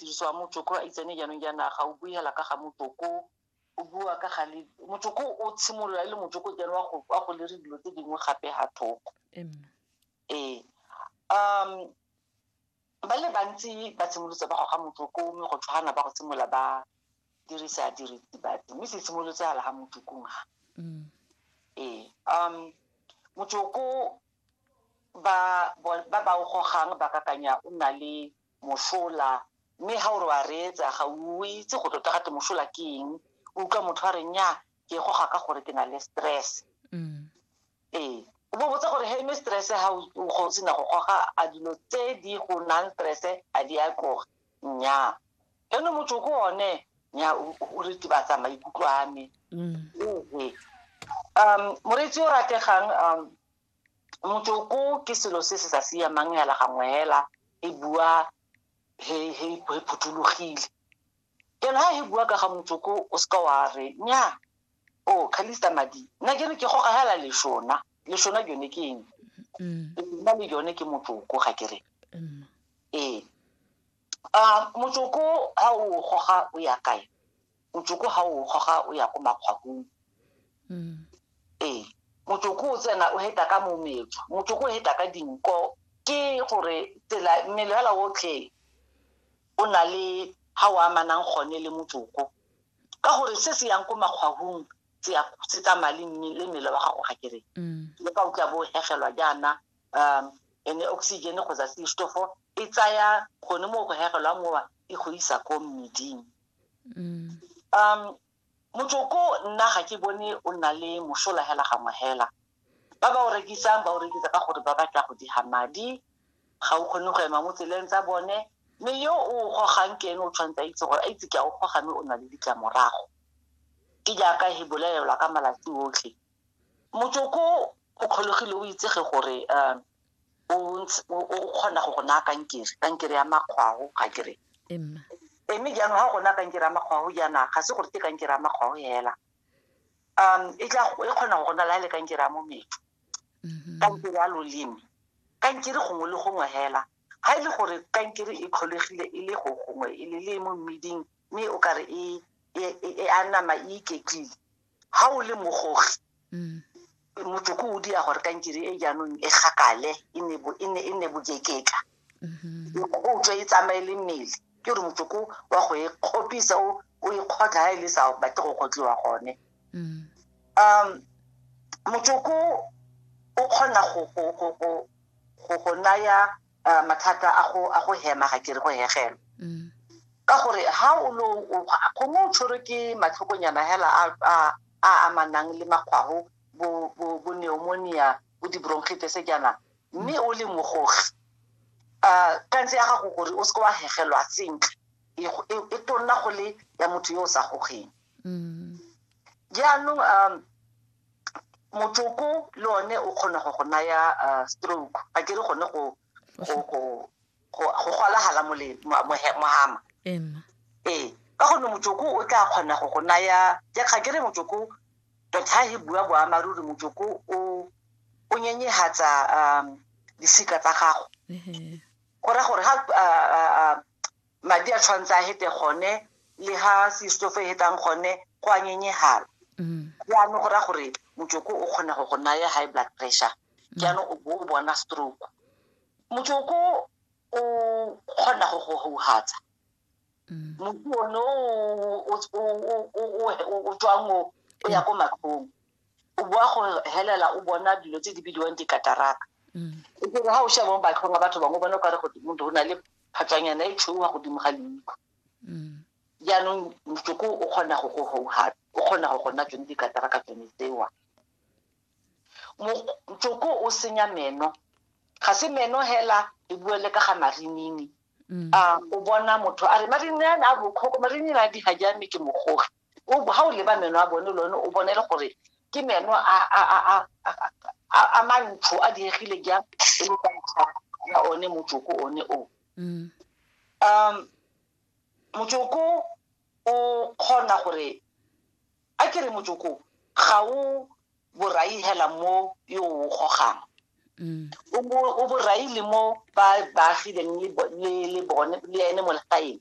tiriso ya motsoko a itsene jaanong ja naga o bue hela ka ga motsoko o bua ka ga le motsoko o tshimolola e le motsoko jalo wa go wa go lere dilo tse dingwe gape ha thoko ee um ba le bantsi ba tshimolotse ba goga motsoko mme go tshwana ba go tshimola ba dirisa diritibatsi mme se tshimolotse ala ga motsokong ga mm. ee um motsoko ba ba ba o gogang ba kakanya o na le mošola mme ga o re wa reetsa ga o itse go tota gate mošola ke eng o utlwa motho a re nya ke goga ka gore ke na le stress mm. ee o bo botsa gore he me stress ga o sena go goga a dilo tse di go nang stress a di a tloga nnyaa eno motho ko one nya o retibatsa maikutlo a me mm. um moreetsi o rategang um motsoko ke selo se se sa siamang yala gangwe hela e bua he he he phuthologile jalo ha he bua ka ga motsoko o seka wa re nya o oh, khalista madi nna ke re ke goga hela leshona leshona jone ke eng mm. leshona le jone ke motsoko ga ke re mm. ee um motsoko ga o goga o ya kae motsoko ga o goga o ya ko makgwakong mm. ee motsoko o tsena o heta ka mometso motsoko o heta ka dinko ke gore tsela mmele fela otlhe o na le ga o amanang gone le motsoko ka gore se se yang ko makgwagong se tsamaya le mmele wa gago ga kere mm. le ka o tla bo hegelwa jaana um ene oxygen kgotsa seistofo e tsaya gone mo go hegelwa mowa e go isa ko mmeding mm. um motsoko nna ga ke bone o nna le mosola hela gangwe hela ba ba o rekisang ba o rekisa ka gore ba batla go diga madi ga o kgone go ema mo tseleng tsa bone mme yo o gogang ke ene o tshwanetse a itse gore a itse ke a o goga mme o na le ditlamorago ke jaaka he bolelelwa ka malatsi otlhe motsoko o kgolegile o itsege gore um o kgona go go naya kankere kankere ya makgwao ga kere mme jaanong ga go naya kankere ya makgwao jaana ga se gore ke kankere ya makgwao fela um e e kgona go go nala le kankere ya mometso mm-hmm. kankere ya loleme kankere gongwe le gongwe fela ga e le gore kankere e kgolegile e le go gongwe e le le mo mmeding mme o kare e, e, e, e a nama e iketlile ga o le mogogi mm. motsoko o dia gore kankere e jaanong e gakale e nne e e bokekeka mm-hmm. o tswa e tsamaye le mmele ke gore motsoko wa go e kgopisa o e kgotlha ga e le sa batle go kgotlhiwa gone mm. um motsoko o kgona go naya uh, mathata a go a go hema ga kere go hegelwa mm. ka gore ha o lo gongwe o tshwerwe ke matlhokonyana hela a amanang le makgwago bo bo bo pneumonia bo di-bronchitis jaana mme o le mogogi um kantse ya gago gore o seke wa hegelwa sentle e, e, e tonna go le ya motho yo o sa gogeng mm. jaanong um motsoko le one o kgona go go naya uh, stroke ga ke re gone go go golagala mohama ee ka gonne motsoko o tla kgona go go naya ke ga ke re motsoko tota e bua boamaruri motsoko o o nyenyehatsa um disika tsa gago go ra gore ga Madi a tshwanetse a hete gone le ha seistofo e hetang gone go a nyenyegala. Jaanong mm. go raya gore motsoko o kgona go go naya high blood pressure mm. jaanong o bo o bona stroke. Motsoko o kgona go go houhatsa mm. motho one o tswang o ya ko matlhong o boa go helela o bona dilo tse di bidiwang dikataraka e kere ga o sheba mo batlhong a batho bangwe o bone o kare go motho o na le phatsanyana e tshweuwa godimo ga leitlho mm. jaanong motsoko o kgona go go gouga o kgona go gona tsone dikatara ka tsone tsewa motsoko o senya meno ga se meno hela e bue le ka ga marinini mm. um o bona motho a re marinini a bokgoko marinini a di ga jamme ke mogogi o ha o leba meno a bone lone o bone le gore ke meno a a a a a- a- a mantsho a diegile jang e le ka ntlha ya one motsoko one o Mm. um motsoko o kgona gore a ke re motsoko ga o borai hela mo yo o gogang Mm. o bo- o borai le mo ba baagileng le bo- le le bone le ene mo legaeng